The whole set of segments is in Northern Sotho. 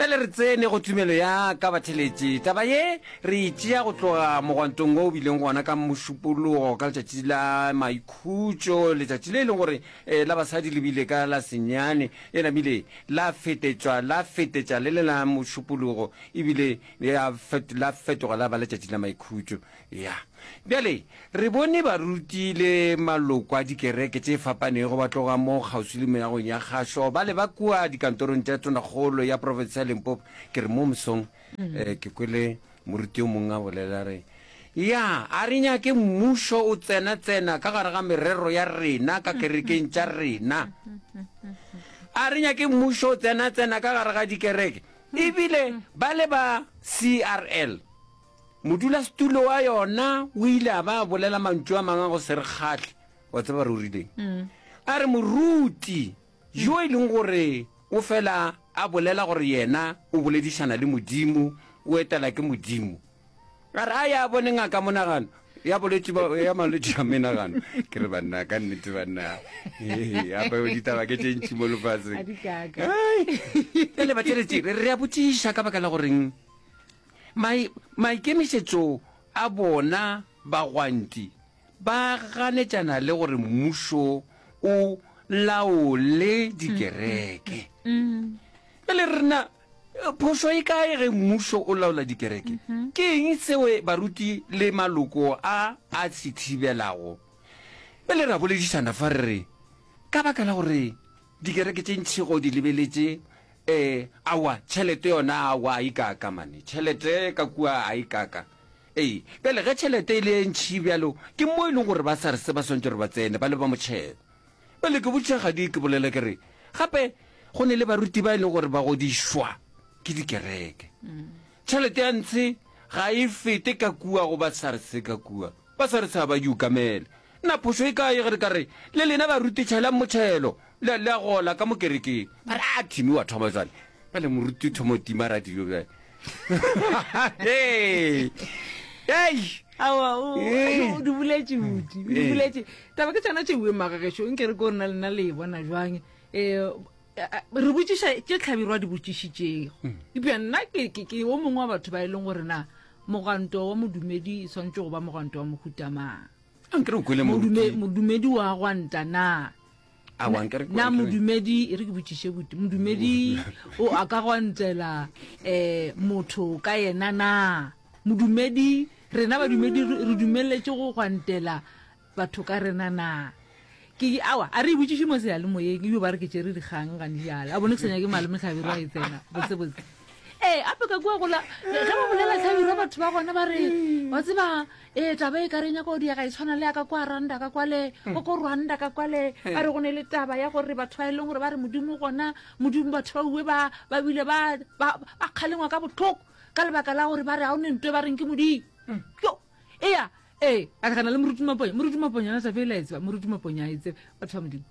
Bjale re tsene go tumelo ya ka batheletši. Taba ye re e tšea go tloga mogwantong wo o bileng gona ka Mošupologo ka letšatši la maikhutšo, letšatši le e leng gore eh, la basadi le bile ka la senyane, e namile la fetetšwa la fetetša le le la Mošupologo, ebile ya fet, la fetoga la ba letšatši la maikhutšo. Ya. Bjale, re bone baruti le maloko a dikereke tše fapanego ba tloga mo kgauswi le meagong ya kgašo, bale ba kua dikantorong tša tonakgolo ya profense ya Limpopo. Ke re, mo mosong, eh, ke kwele moruti yo mongwe a bolela, a re, Ya, a re nyake Mmušo o tsena-tsena ka gare ga merero ya rena ka kerekeng tša rena. A re nyake Mmušo o tsena-tsena ka gare ga dikereke. Ebile bale ba CRL, Modulasetulo wa yona o ile a ba a bolela mantšu a mangwe a go se re kgahle. Wa tseba re o rileng? A re, Moruti, yo e leng gore o fela a bolela gore yena o boledišana le Modimo, o etela ke Modimo, a re a ye a bone ngaka ya monagano, ya bolwetši ba, ya malwetši a menagano. Ke re, Banna, ka nnete, banna, hei, gape ditaba ke tše ntši mo lefaseng. Bjale, batšweletši, re a botšiša ka baka la goreng. Mai, maikemišetšo a bona bagwanti ba ganetšana le gore mmušo o laole dikereke. Bjale re na, phošo e kae ge mmušo o laola dikereke? Ke eng seo baruti le maloko a a se thibelago? Bjale re a boledišana fa re re, Ka baka la gore Dikereke tše ntši go di lebeletše. Ee, aowa, tšhelete yona aowa a e kaka, mane. Tšhelete ka kua a e kaka. Ee, bjale ge tšhelete e le e ntši bjalo, ke mo e leng gore ba SARS ba swantše gore ba tsene, ba le ba motšhelo. Bjale ke botša gadi ke bolela ke re, gape go ne le baruti ba e leng gore ba godišwa ke dikereke. Tšhelete ya ntshe ga e fete ka kua go ba SARS ka kua. Ba sa re tshaba, di okamele. Na phošo e kae ge re ka re, le lena baruti tšhelang motšhelo, le, le a gola ka mo kerekeng? Ba re, A, Timmy wa thoma bjale. Bjale moruti o thoma go tima radio bjale. Hei! Hei! Aowa, o, Ee. o di boletše budi, o di Ee. boletše. Taba ke tšona tšeue, mmaga gešo, nke re ko rena lena le e bona bjang? um re botšiša tše tlhabiro a di botšišitšego epja nna ke o mongwe wa batho ba e leng gore na moganto wa modumedi e tshwanetse go ba moganto wa mohutamang modumedi wa gwanta na na modumedi e re ke botšiše bute modumedi o a ka gwantela um motho ka yena na modumedi rena badumedi re dumeletse go gwantela Batho ka rena na? Ke di awa, a re ibotšiši mo seyalemoyeng, ebi ba re ke tšere dikgang ga ndijala. A bone ke senya ke malome Tlhabiro a e tsena, botse botse. Ee, ape ka kua gola, ge ba bolela Tlhabiro batho ba gona ba re, wa tseba, ee, taba e ka re nyaka go diega e tshwana le ya ka kua Randa ka kwale, go ko Rwanda ka kwale, ba re go ne le taba ya gore batho ba e leng gore ba re Modimo gona, Modimo batho ba uwe ba, ba bile ba, ba, ba kgalengwa ka botlhoko ka lebaka la gore ba re ga o ne nto e ba reng ke Modimo. Yo, eya, ee a re gana le moruti maponya moruti maponya yona taba e la e tseba moruti maponya a e tsebe batho ba modimo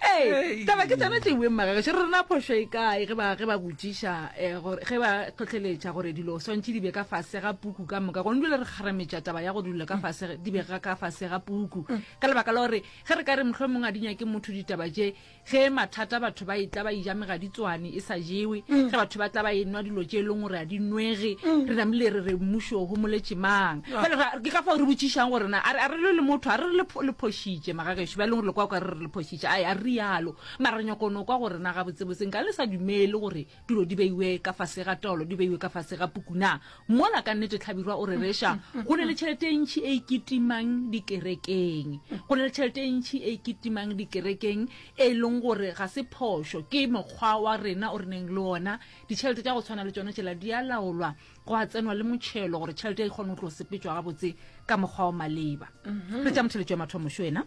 ee taba ke tsone tšeweng magagešo re rena phošo e kae ge ba ge ba botsiša eh, gore ge ba tlhotlheletša gore dilo swantšhe di be ka fase ga puku ka moka gone dule re kgarametša taba ya gore dilo ka fase di be ga ka fase ga puku ka lebaka la gore ge re ka re mohlomongwe a di nyake motho ditaba tše Ge e mathata batho ba etla ba ija megaditswane e sa jewe, mm. ge batho ba tla ba e nwa dilo tše e leng gore a di nwege, mm. re namile re re mmušo go moletše mang. Ah. Bale ke ka fao re botšišang gore na a re le motho a re le lephošitše magagešo ba e leng gore le kwa kwa re re lephošitše a re rialo mara re nyako no kwa gore na gabotsebotseng ka le sa dumele gore tulo di beiwe ka fase ga tolo di beiwe ka fase ga pukuna mola ka nnete tlhabirwa o re reša go ne le tšhelete e ntšhi e iketimang dikerekeng go ne le tšhelete e ntšhi e iketimang dikerekeng e leng gore ga se phošo ke mokgwa wa rena o re neng le ona ditšhelete tša go tshwana le tsone tšela di a laolwa go a tsenwa le motšhelo gore tšhelete e kgone go tlo sepetswa gabotse ka mokgwa o maleba mhm. re tša motheletšo ya mathomošo ena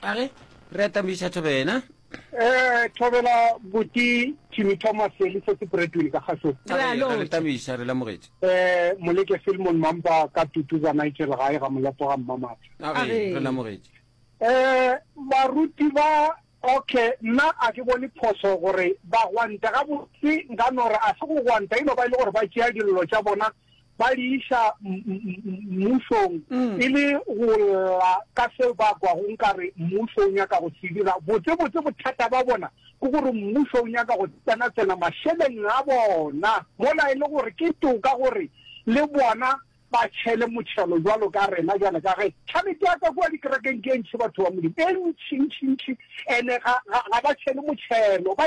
a re re atambiša thobena Thobela Buti Timmy Thomas le Sesi Bradwin ka kgahlong. Re a Re le thabiša, re lemogetše. Moleke Filmon Mampa ka tutu za Nigel gae ga Molopo ga Mmamatha. A re, Re re. lemogetše. Baruti ba, okay, nna a ke bone phoso gore ba gwante. Gabotse nka no re a se go gwanta, e no ba e le gore ba tšea dillo tša bona ba di iša mmusong e le go lla ka seo ba kwago nkare mmuso o nyaka go se dira. Botsebotse bothata ba bona ke gore mmuso o nyaka go tsenatsena mašeleng a bona mola e le gore ke toka gore le bona ba tšhele motšhelo jwalo ka rena bjale ka ge tšhalete ya ka kua dikerekeng ke e ntšhi batho ba Modimo e ntšhintšhintšhi ene ga ba tšhele motšhelo ba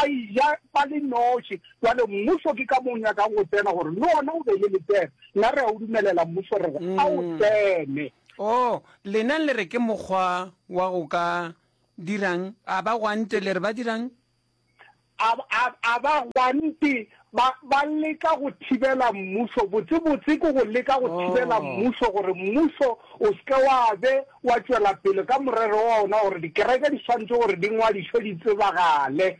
ija ba le noši. Bjale mmušo ke ka mo o nyakago go tsena gore le ona o be le letseno. Nna re a o dumelela mmušo re re a o tsene. Oh, lena le re ke mokgwa wa go ka dirang? A ba gwante le re ba dirang? A, a, a ba gwante ba, ba leka go thibela mmušo. Botsebotse ke go leka go thibela Oh. mmušo gore mmušo o se ke wa be wa tšwela pele ka morero wa ona gore dikereke di swanetše gore di ngwadišwe di tsebagale.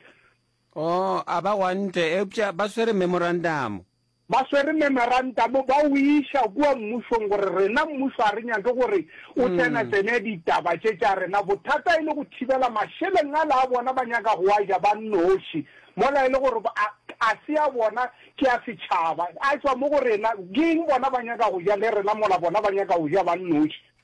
Oo, a ba gwantle, eupša ba swere memorantamo. Ba swere memorantamo, ba o iša kua mmušong, gore rena mmušo ga re nyake gore o tsenatsene ditaba tše tša rena. Bothata e le go thibela mašeleng ala a bona, ba nyaka go a ja ba nnoši, mola e le gore a, a se a bona, ke a setšhaba, a tšwa mo go rena. Ke eng? Bona ba nyaka go ja le rena, mola bona ba nyaka go ja ba nnoši.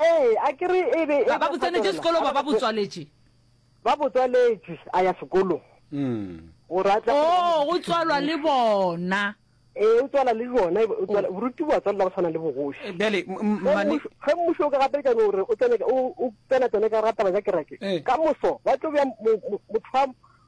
Ee, a ke re e be e. Ba, ba bo tsenetše sekolo, ba, ba bo tswaletše. Ba bo tswaletše, a ya sekolong. Gore a tle. Oo, go tswalwa le bona. Ee, o tswala le bona, o tswala, boruti bo a tswalela go tshwana le bogoši. Bjale, mane. Ge mmušo o ka gapeletša gore o tsene, o tsena tsone ka ga taba tša kereke, ka moso ba tlo bja motho wa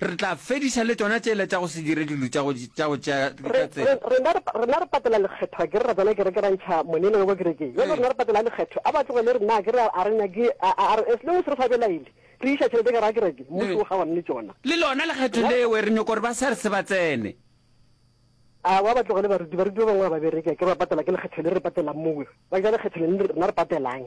Re tla fediša le tšona tšela tša go se dire dilo tša go tša go tšea Re, ka tsela. re, rena, re, rena re patela lekgetho akere ra tsena kereke ra ntšha monene wa kwa kerekeng. Bjale Ee. rena re patela lekgetho. A ba tlogele rena akere a a re nyake, a, a, a re, as long as re sa belaele, re iša tšhelete gare ga kereke, mmušo Ee. o kgaogane le tšona. Le lona lekgetho Rena re pa- leo re nyoko gore ba SARS ba tsene. Aowa, a ba tlogele baruti, baruti ba bangwe ga ba bereke akere ba patela ke lekgetho le re patelang mowe. Ba ja lekgetho lene le rena re patelang.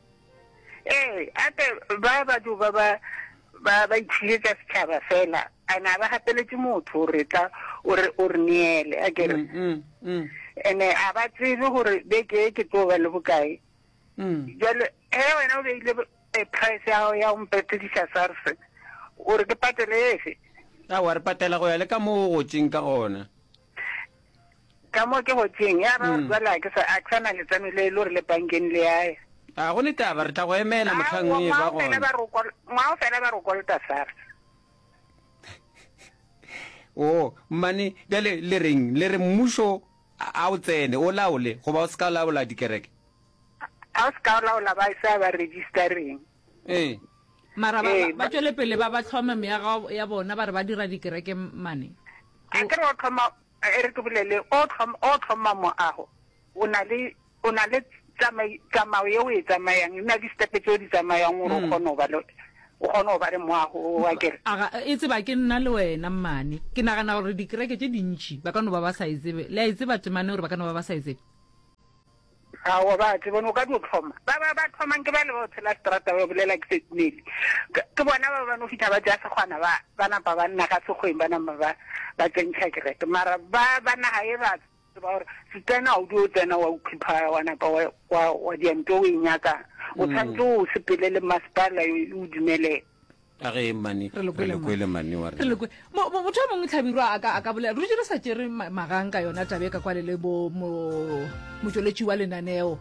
Ee, gape ba batho ba ba ba ba itšhiletša setšhaba fela ane a ba gapeletše motho gore tla o re o re neele a kere mm, mm, mm. ene a ba tsebe gore beke e ke tlo ba le bokae jale ge wena o beile e price ya gago ya go mpetedisa sars o re ke patele efe a wa re patela go ya le ka moo o gotseng ka gona ka mo ke gotseng ya ba mm. jwale a ke sa na letseno le e le gore le bankeng le yaya a go ne taba re tla go emela motlhang e ba gona ngwao fela ba rokolta sars o oh, mmane bjale le reng le re mmušo a o tsene o laole goba o se ka laola dikereke a o se ka laola ba sa ba registereng ee mara ba- Ee, ba- ba tšwele pele ba ba tlhome meago ya bona ba re ba dira dikereke mane a ke re o tlhoma e re ke bolele o tlhoma o tlhoma moago o na le o na le tsamai- tsamao ye o e tsamayang o na le distepe tse o di tsamayang gore o kgone go ba le o kgone go ba le moago o wa kere aga e tseba ke nna le wena mmane ke nagana gore dikereke tše dintšhi ba ka no ba ba sa e tsebe le a e tseba temane gore ba ka no ba ba sa e tsebe Aowa ba tseba no ka dio thoma ba ba ba thomang ke ba le ba tshela strata ba bolela ke setmele ke bona ba ba no fitha ba tsaya segwana ba ba napa ba nna ga segweng ba nama ba ba tsentšha kereke mara ba ba naga e ba tseba gore setsena o dio tsena wa ukhipha wa napa wa wa wa dianto o e nyaka o tshwantse o sepele le masepala o dumelela Ka ge mani, re le kwele mani wa rena. Motho a mongwe Tlhabirwa a ka a ka bolela re dutše re sa tšere magang ka yona tabe ka kwane le bo motšweletši wa lenaneo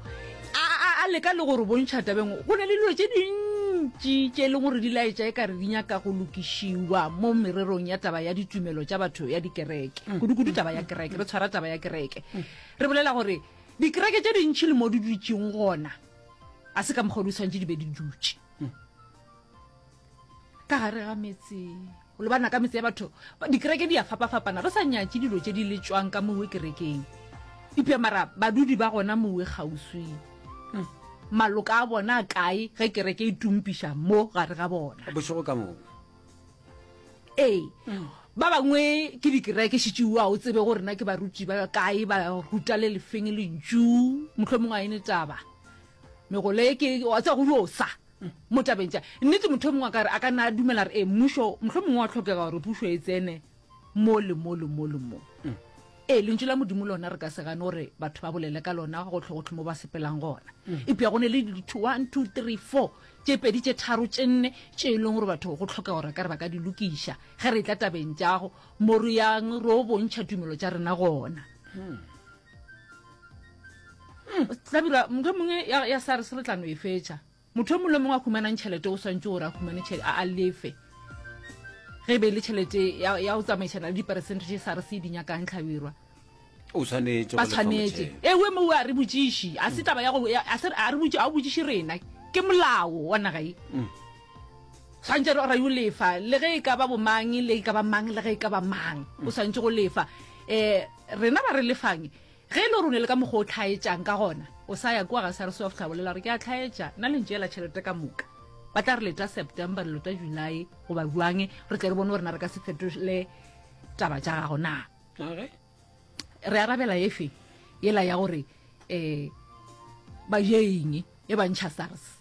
a leka le gore bontšha tabeng go ne le dilo tše dintši tše e leng gore di laetša e kare di nyaka go lokišiwa mo mererong ya taba ya ditumelo tša batho ya dikereke mm. kudu-kudu taba ya kereke re tshwara taba ya kereke mm. re bolela gore dikereke tše dintši le mo di dutšeng gona a se ka mokgwa di tshwanetse di be di dutše mm. ka gare ga metse o lebana ka metse ya batho dikereke di a fapafapana re sa nyatse dilo tse di le tswang ka mowe kerekeng ipja mara badudi ba gona mowe kgauswi hmm. maloka a bona kae ge kereke e tumpiša mo gare ga bona bošego ka mowe ee hmm. ba bangwe ke dikereke šitšeo a o tsebe go rena ke baruti ba kae ba ruta le lefeng lentšu motlho mongwe a ene taba megole ke wa tsa go yosa mo tabeng tša nnete motho o mongwe a ka re a ka na a dumela re ee mmušo mohlho mongwe wa tlhokega gore pušo e tsene mo le mo le mo le mo ee lentšu la modimo lona re ka se gane gore batho ba bolele ka lona go tlhogotlho mo ba sepelang gona epja go ne le ditho one two three four tše pedi tše tharo tše nne tše e leng gore batho go tlhokega gore ka re ba ka di lokiša ge re tla tabeng tjago mo re yang ro bontšha tumelo tša rena gona hmm, tlabira motho mongwe ya sa re se re tlano e fetša motho o mongwe le mongwe a humanang tšhelete o swantse gore a humane tšhelete a lefe ge e be e le tšhelete ya go tsamaišana le diperesente tše sa re se e dinyakang tlhabirwa ba tshwanetse ewe mo a re botsiši a se taba ya go a re botsi a o botsiši rena ke molao wa naga e mm. Swantše re yo lefa le ge e ka ba bomang le e ka ba mang le ge e ka ba mang o swantše go lefa um rena ba re lefang ge e le gore o ne le ka mokgwa o tlhaetsang ka gona o sa ya kua ga sa re se wa fihla bolela gore ke a tlhaetša nna le ntšeela tšhelete ka moka ba tla re leta september re leta july goba bjang re tle re bone gore na re ka se fetole taba tša gago na re arabela efe yela ya gore um ba jeeng e bantšha sars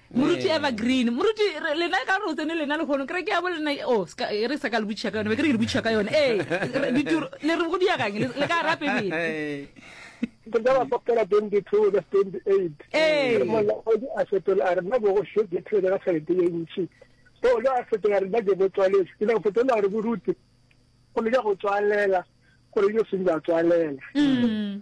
Moruti eh. evergreen moruti lena ka gore o tsene lena legono kere ke ya bo lena o oh, e re sa ka le botšha ka yone be ke re ke le botšha ka yone ee le re go diagang le ka rape bene ke ka ba kopela twenty two le twenty eight ee. re molaodi a fetola a re nna bogo sho ke thele ka tšhelete ye ntšhi so o le a fetola re nna ke bo tswaletse ke ne go fetola gore boruti go le ka go tswalela gore yo seng ba tswalela mm.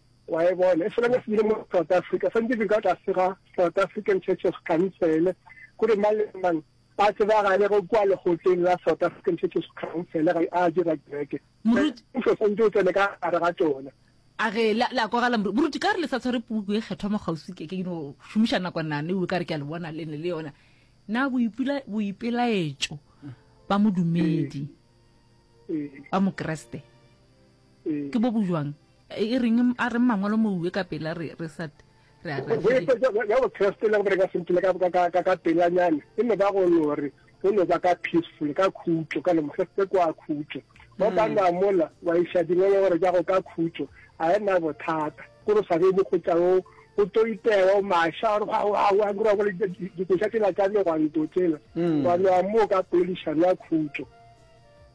wa e bona e fela se bile mo south africa santse ke ka tlase ga south african church of council kore mang le mang a tsebagale go kwa legotleng la south african church of council ga a dira kereke mmuso santse o tsene ka gare ga tsona a ge la la kwagala moruti ka re le sa tshware puku e kgethwa mo gausi ke ke no šomiša nako nane o ka re ke a le bona lene le yona na boipela boipelaetšo ba modumedi ba mokreste ke bo bojwang e reng a reng mangwalo mouwe ka pela re re sa re a re ya go trust le go reka simple ka ka ka ka pela nyana e no ba go no re go no ba ka peaceful ka khutso ka lemo se se kwa khutso ba ba na mola wa isha di ngolo gore ja go ka khutso a e na bothata go re sa be mo go tla o o to itewa o masha o ga wa wa go ra go di go shatela tsa le go ntotela ba no mo ka polishana khutso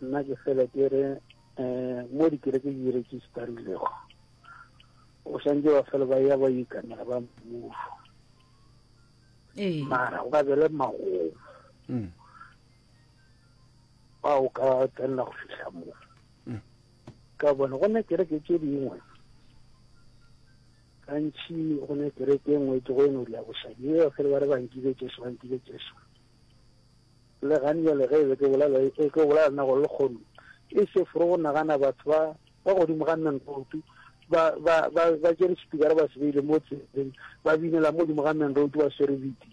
nna ke fele ke re um mo dikereke di registarilego o swantse ba fele ba ya ba ikanela ba mmuso ee. mara o ka bele magomo mm. ba o ka tsenela go fitlha moo mm. ka bone go ne kereke tse dingwe gantši go ne kereke e nngwe ke go e no dia bošadi e fele ba re bankile jesu bankile jesu Le gane bjale ge e be ke bolela, e tlo bolela le nna gore lekgono ke seforo go nagana batho ba ba godimo ga Menroutu ba ba ba ba tšere sepikara ba se beile mo tseleng ba binela mo godimo ga Menroutu ba swere bidi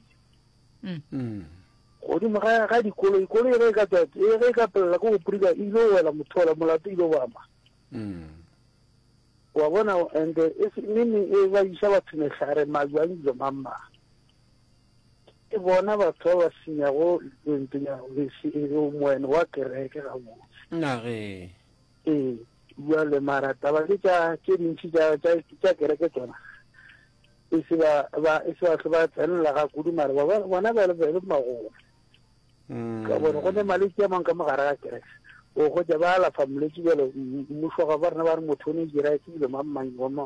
mm. godimo ga ga dikoloi koloi ge e ka tswa e ge e ka pelela ko go prika e ile wela mothola molato ile ba ma mm. wa bona and e se nne e ba isa batho mehlare majwang dilo mamma Ke bona batho ba ba senyago lentso ya Mesi e o moen wa kereke gabotse. Nage. Ee, bjale mara taba ke tša tše dintši tša tša tša kereke tsona. E se ba ba e se ba hle ba tsenela ga kudu mara ba ba bona ba le ba le magolo. Mm. Ka bona go ne malwetse a mang ka mogare ga kereke. O go ja ba alafa molwetse bjale mmušo ga ba rena ba re motho o ne dira e tsebile mang mang wa ma